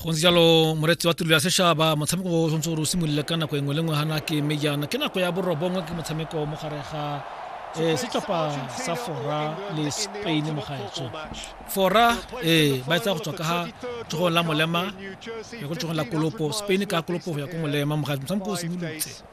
go ntse jalo moreetsi wa tirelo ya sešaba motshameko o tshwanetse gore o simolole ka nako engwe le ngwe gana ke mme jaana ke nako ya borobongwe ke motshameko mo gare ga um setlhopha sa fora le spain mo gaetso fora ee ba etsa go tswa ka ga tshogong la molema ya ko tshogong la kolopo spain ka kolopo go ya ko molema mo gaetso motshameko o simolotse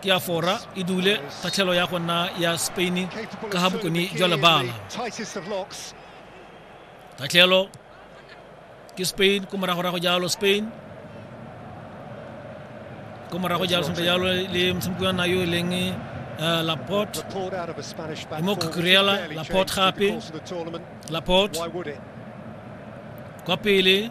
ke ya fora e dule kgatlhelo ya go nna ya spain ka ga bokone jwa lebala kgatlhelo ke spain ko moragorago jalo spain ko morago jalo sentle jalo le motshameki wa nayo e leng uh, laporte mo kukurela laporte gape laporte kwa pele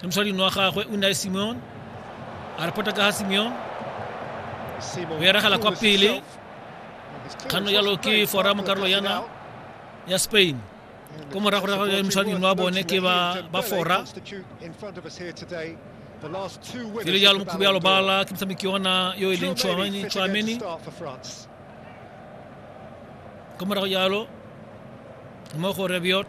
Ke mosading wa gagwe o ne a Simeon. A re pota ka ga Simeon. O eragela kwa pele. Kganno jalo ke fora mo karolo yana ya Spain. Ko morago ra gagwe mosading wa bone ke ba ba fora. Pele jalo mokhubi ya lobala ke motshameki yona yo e leng Chouameni. Chouameni. Ko morago jalo mo go Rebiot.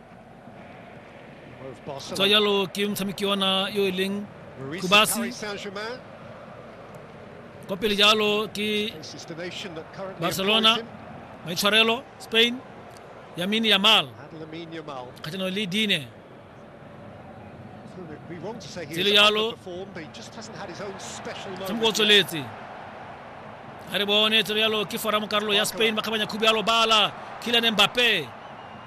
tsa jalo ke motshameki ona yo e leng kubasi kwa pele jalo ke barcelona maitshwarelo spain yamini yamal kgatlhanong le dine tse le jalo motshameko o tsweletse ga re bone tse jalo ke foramo karolo ya spain ba kgabanya khubi yalo bala kilane mbape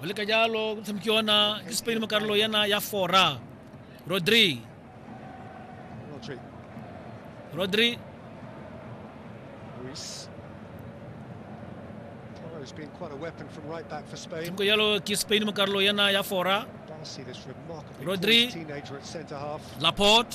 go leka jalo go tshameki yona ke spain mo karolo yana ya fora rodri rodri tshameko jalo ke spain mo karolo yana ya fora rodri laporte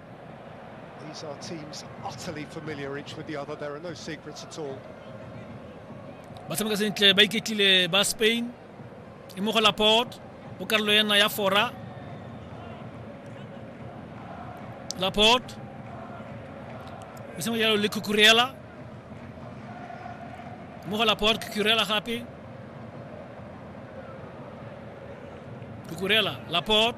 These are teams utterly familiar each with the other. There are no secrets at all. ba tshameka sentle ba iketlile ba spain e mo go laport mo karolo ena ya fora laport o sengwe jalo le cucurella mo go laport cucurella gape cucurella laport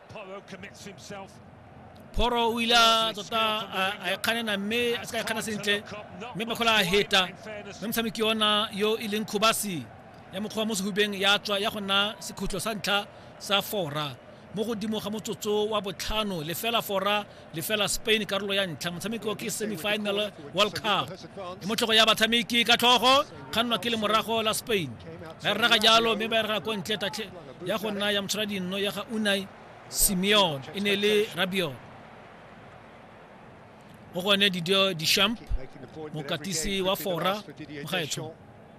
phoro o ile a tota a- a e kganena mme a se ka e kgana sentle mme bakgola a heta mme motshameki ona yo e leng khobasi ya mokgwa wa mo sehubeng ya tswa ya go nna sekhutlo sa ntlha sa fora mo godimo ga motsotso wa botlhano lefela fora lefela spain karolo ya ntlha motshameko ke semifinal world cup e motlhogo ya batshameki ka tlhogo kgannwa ke lemorago la spain ba e rraga jalo mme ba e rraga ko ntle tatlhe ya go nna ya motshwara dinno ya ga unai simeon e ne le rabion go gone didio dishamp mokatisi wa fora mogaetsho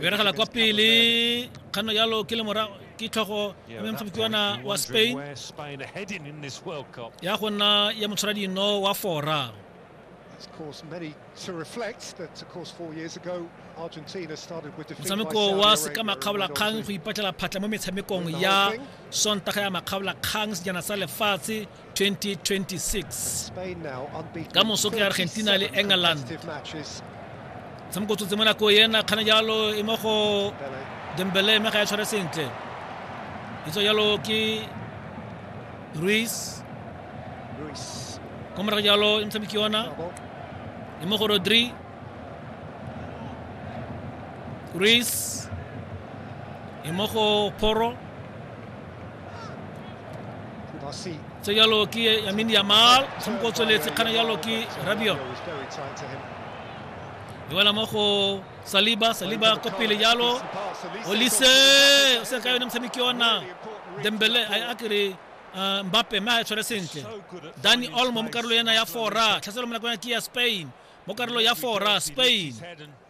beragela kwa pele kganno jalo ke le morago ke tlhogo ya motshopitiwana wa spain ya go nna ya motshwara dino wa fora motshameko wa seka makgabolakgang go ipatlela phatlha mo metshamekong ya sontaga ya makgabolakgang sejana sa lefatshe 2026 ka moso ke argentina le england tshamoko tsotse mo nako ena kgane jalo e mo go dembele mme ga ya tshware sentle itso jalo ke ruis ko morago jalo e motshameki yona e mo go rodri ruis e mo go poro tse jalo ke yamin yamal motshameko o tsweletse kgana jalo ke rabio e wela mo go saliba saliba ko pele jalo olise o se ka yone motshameki ona dembele a a kere uh, mbappe mme a e tshwere sentle dani olmo mo karolo ena ya fora tlhaselo mo nakong ya ke ya spain mo karolo ya fora spain